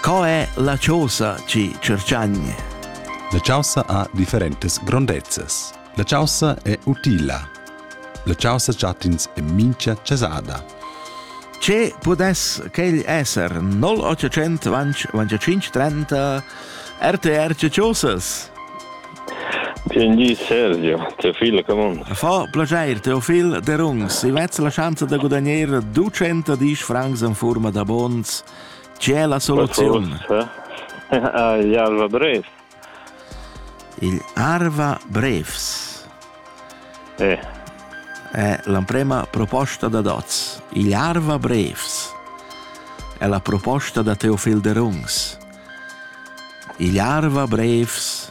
Co è la chaussa chi cerchagna? La chaussa ha differentas grondezzas. La chaussa è utila. La chaussa chattins è mincha chasada. Ce pudess quel esser 0800 25 30 RTR Chaussas? Vielen Dank, Sergio. Teofil, come on. Fa piacere, Teofil De Rungs. Si vezz la chance de guadagnare 200 dis francs in forma da bonds C'è la soluzione? Ah, gli Alva Bref. Il Arva Brefs. Eh. È l'emprema proposta da Doz. Il Arva Brefs è la proposta da Teofil de Rungs. Il Arva Brefs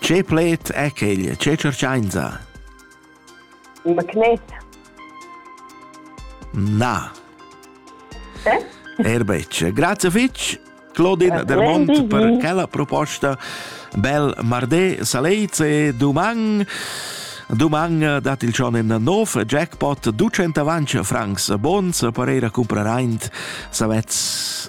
Che pled è quel? Che tschertschainsa? In magnet. Na. Eh? Erbetsch. Grazie fitch, Claudine Del Monte, per quella proposta. Bel martè, saleit e doman. Doman dat il schon in nov jackpot 200 francs bons per ir a comprar ein savetz